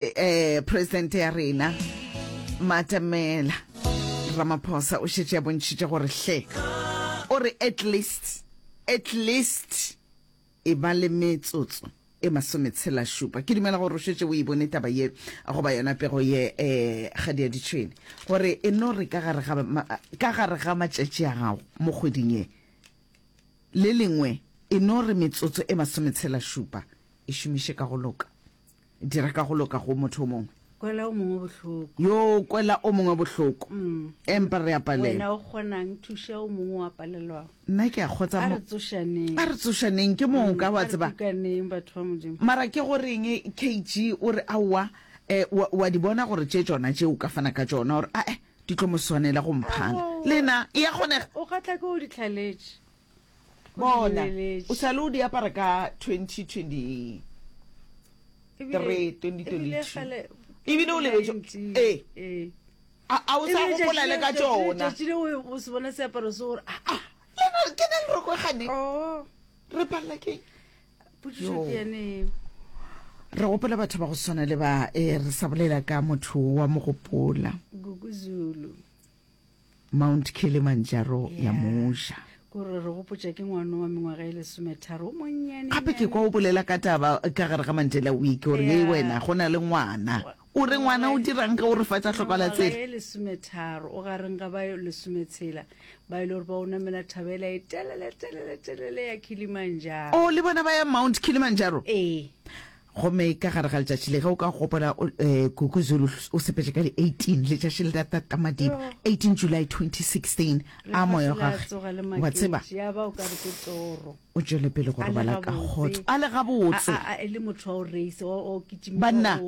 eh, presidente ya rena matamela ramaphosa o šetše ya bontšhitše gore hle o re at least at least e ba le metsotso e masometshela šupa ke dumela gore o šetse o e bone taba ye goba yona pego ye um ga di ya ditšhwene gore e no re ka gare ga matšatši a gago mo kgweding ye le lengwe e no re metsotso e masometshela šupa e šomiše ka go loka dira ka go loka go motho o mongwe kwela o mongwe bohloko yo kwela o mongwe bohloko mm. empa re apalelwena o kgonang thuša o mongwe wa palelwago nna ke a kgotsa a re tsošaneng ke mong ka wa mm, tseba mara ke goreng kg o re aowa um eh, wa di bona gore tše tsona tše o ka fana ka tsona gore ae di tlo mo swanela go mphana lena e ya kgonega o ka tla ke o ditlhaletse bona o sa le o di apara ka 2023 ebile o lebetso ee eh. a o sa gopola le ka tsona ke na le roko gane oh. re palela keng re gopela batho ba go swana le ba e re sa bolela ka motho wa mogopola gukuzulu Mount Kilimanjaro ya mo ja. Ke gore re gopotša ke ngwano wa mengwaga e lesometharo o monnyane. Gape ke kwa o bolela ka taba ka gare ga Mandela Week gore ye wena go na le ngwana. O re ngwana o dirang ge o re fa tša hlokala tsela. Mengwaga e lesometharo o gareng ga ba lesometshela ba e le gore ba o namela thaba ela e telele telele telele ya Kilimanjaro. Oh le bona ba ya Mount Kilimanjaro? Ee. Gomme ka gare ga letšatši le, ge o ka gopola, o, eh, Gugu Zulu o sepetše ka di 18, letšatši le la tata madiba, 18 July 2016, a moya wa gage, wa tseba, o tšwele pele go robala ka kgotso, a le gabotse. Banna,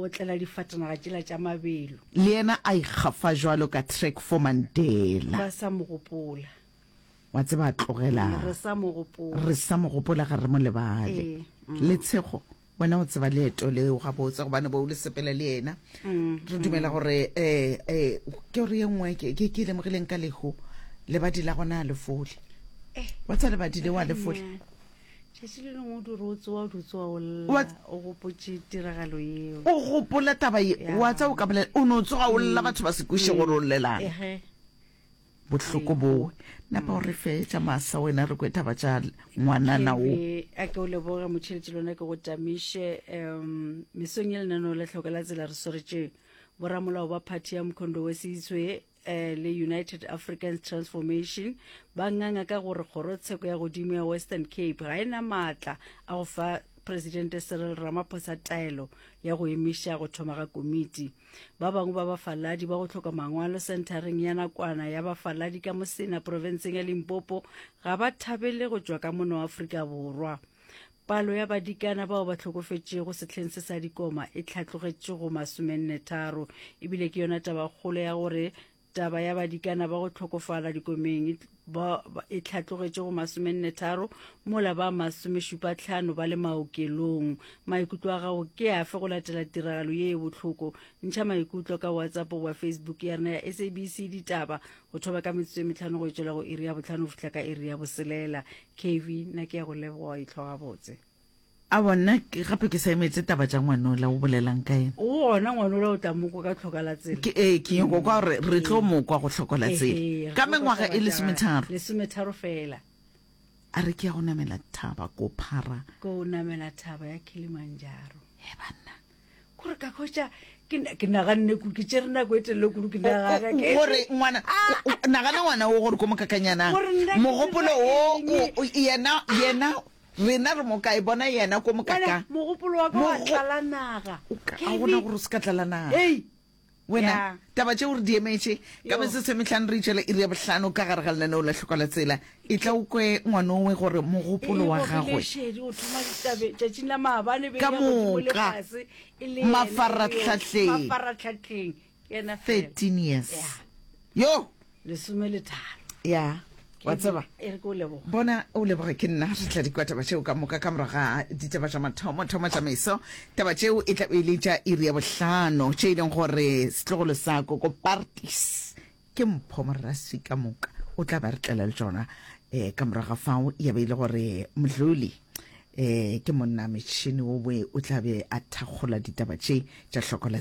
le yena a ikgafa bjalo ka track for Mandela. wa tseba tlogela re sa mo gopola re sa mo gopola ga re mo lebale eh, mm. le tshego wena o tseba leeto leo ga botse gobane bo o le sepela le ena mm, re dumela mm. gore eh, eh, ke gore ye nngwe ke ke lemogileng ka leho lebadi la gona a lefole eh. wa tsa lebadi le wa lefole tšatši le lengwe o dire o tsoa o dutse wa olla o gopotse tiragalo eo o gopola taba ye wa tsa o ka bolela o ne o tsoga o lla batho ba se kwiše gore o llelang bohloko bowe napa o re fetša masa wena re kwe taba tša ngwanana o a ke o leboge motšheletši lona ke go tamiše um mesong ye lenaneo la tlhoka la tsela re swaretše boramolao ba phathi ya mkhondo we seitswe eh, le united africans transformation ba nganga ka gore kgorotsheko ya godimo ya western cape ga e na maatla a go fa presidente cyril ramaphosa taelo ya go emiša go thoma ga komiti ba bangwe ba bafaladi ba go tlhoka mangwalo senthareng ya nakwana ya bafaladi ka mosena profenseng ya limpopo ga ba thabele go tšwa ka mona wa aforika borwa palo ya badikana bao ba tlhokofetšego sehleng se sa dikoma e tlhatlogetše go masomennetharo ebile ke yona tabakgolo ya gore Taba ya badikana ba go tlhokofala dikomeng e tlhatlogetše go masomennetharo mola ba masomešupatlhano ba le maokelong. Maikutlo a gago ke afe go latela tiragalo ye e bohloko? Ntšha maikutlo ka WhatsApp goba Facebook ya rena ya SABC Ditaba go thoba ka metsotso e metlhano go e tšwela go iri ya botlhano go fihla ka iri ya boselela. KV, nna ke ya go leboga, e tlhoga botse. A bona gape ke sa emetse taba tša ngwanola o bolelang ka yena. Gona ngwanola o tla mokwa ka tlhoka la tsela. Ke ee ke nyoko kwa gore re tlo mokwa go tlhoko la tsela. Ka mengwaga e lesometharo. Lesometharo fela. A re ke ya go namela thaba ko phara. Ko namela thaba ya Kilimanjaro. He banna. Gore ka khotša ke naganne ku ke tšere nako e telele kudu ke nagana ke gore ngwana ah, ah, nagana ngwana o gore ko mokakanyanang mogopolo o yena yena Rena re mo kae? Bona yena ko moka ka. Wena mogopolo wa ka wa tlala naga. A gona gore o se ka tlala naga. Hey. Wena taba tšeo re di emetše ka metse se metlhano re itšela iri ya bohlano ka gare ga lenaneo la tlhoka la tsela e tla o kwe ngwanowe gore mogopolo wa gagwe ka moka mafarratlhatlheng Yena fela. 13 years Ya. yo lesome le tharo ya wa tseba e re ke o leboga bona o leboge ke nna re tla di kwa taba tšeo ka moka ka morago ga ditaba tša mathomo thomo tšamaiso taba tšeo e tla be e le tša iri ya bohlano tše e leng gore setlogolo sa koko partis ke mpho moraswi ka moka o tla ba re tlela le tšona um ka morago ga fao ya be e le gore modloli um ke monna metšhini o boe o tla be a thakgola ditaba tše tša hloko la